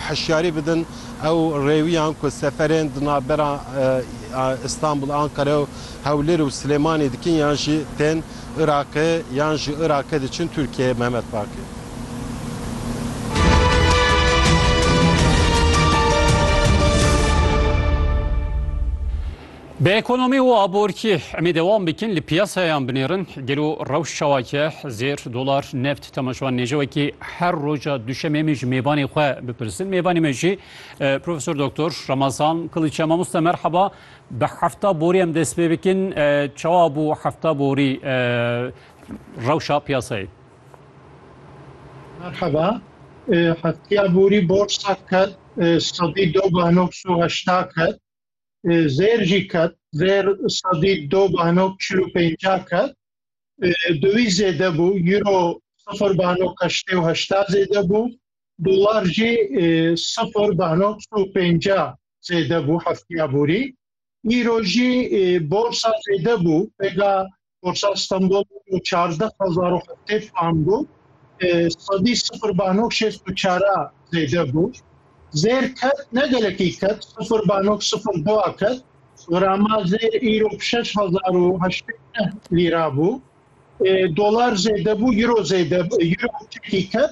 Hişyarî bidin ew rêwiyan ku seferên di navbera Îstanbul, Ankara û Hewlêr û Silêmanî dikin yan jî tên Iraqê yan ji Iraqê diçin Tirkiyeyê, Mehmet Baqî. Bi ekonomî û aborkî emê dewam bikin li piyasayan binêrin, gelo rewş çawa ye, zêr, dolar, neft tema ji wan nêje wekî her roja duşemê em ê ji mêbanê xwe bipirsin. Mêbanê me jî Profesor Doktor Ramazan Kiliç e. Mamoste merheba. Bi hefta borî em dest pê bikin. Çawa bû hefta borî rewşa piyasayê? Merheba. Heftiya borî borsa ket sedî do bano heşta ket. zêr jî ket zêr sedî do banok çil û pênca ket di wî zêde bû euro sifir banok heştê û heşta zêde bû dolar jî sifir banok û pênca zêde bû heftiya borî îro jî borsa zêde bû pêga Borsa Stenbol û çazdeh hezar û heftê puan bû. Sedî sifir banok şêst û çara zêde bû. Zêr ket ne gelekî ket sifir banok sifir dua ket. Grama zêr îro şeş hezar û heştê neh lîra bû. Dolar zêde bû, euro zêde euro çekî ket.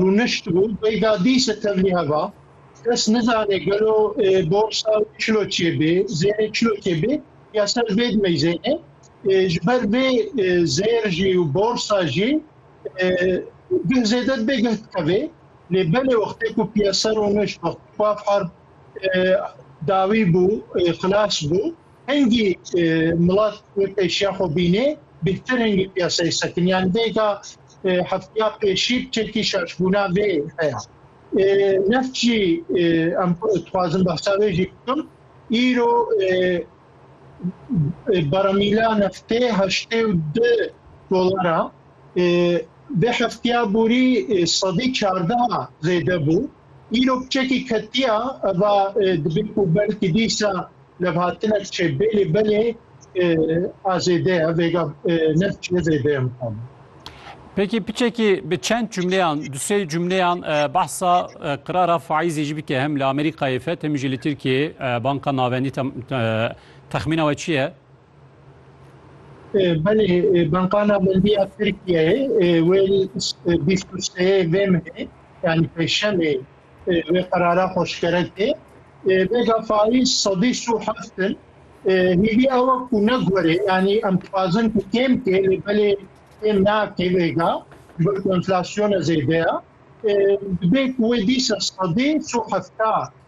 rûnişt bû beyda dîse tevlî heva kes nizanê gelo borsa çilo çêbê zêrê çilo çêbê ya ser vê dimey zêrê ji ber vê zêr jî û borsa jî bih zêde bê geh dikevê lê belê wextê ku piyasa rûnişt wextê ku afar dawî bû xilas bû Hingî milat wê pêşiya xwe bînê bîrtir hingî piyaseyê sekinî yanî dêka heftiya pêşî çekî şaşbûna vê heya. Neft jî em dixwazim behsa wê jî bikim. Îro baramîla neftê heştê û du dolar a. Vê heftiya borî sedî çardeha zêde bû. Îro kçekî ketiya eva dibê ku belkî dîsa levhatinek çê bêlê belê a zêde ye vêga ne çê zêde ye mixabin. Peki piçeki bi çend cümleyan, du sey cümleyan e, bahsa e, qirara faizê jî bike hem li Amerîkayê fet hem jî li Tirkiyeyê e, banka navendî texmîna we çi ye? Belê Banka Navendîya Tirkiyeyê wê bîst û seyê vê mehê yanî pêşemê wê qerara xweşkere tê. Vêga faiz sedî sû heft in. Hîvî ew e ku ne gorê yanî em dixwazin ku kêm tê lê belê kêm nake vêga ji ber ku enflasyona zêde ye. Dibê ku wê dîsa sedî sû hefta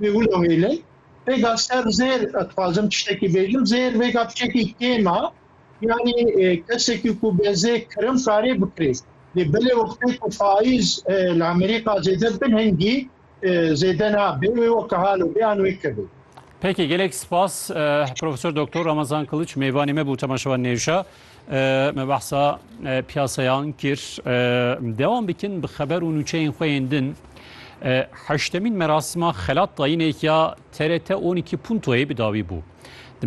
Wê wilo hêle. Vêga ser zêr dixwazim tiştekî bêjim zêr vêga piçekî kêma yanî e, kesekî ku bi zê kirim karê bikirê. Lê belê wextê ku faiz e, li Amerîka zêde bin hingî e, zêde nabe wê weke halo bê an wê kevê. Peki gelek spas e, Profesör Doktor Ramazan Kılıç meyvanê me bu temaşevan nêwşa. Me behsa piyasayan kir. Dewan bikin bi xeber û nûçeyên xwe yên din. Heştemîn merasima xelat dayînê ya TRT 12 Puntoyê bi dawî bû. Di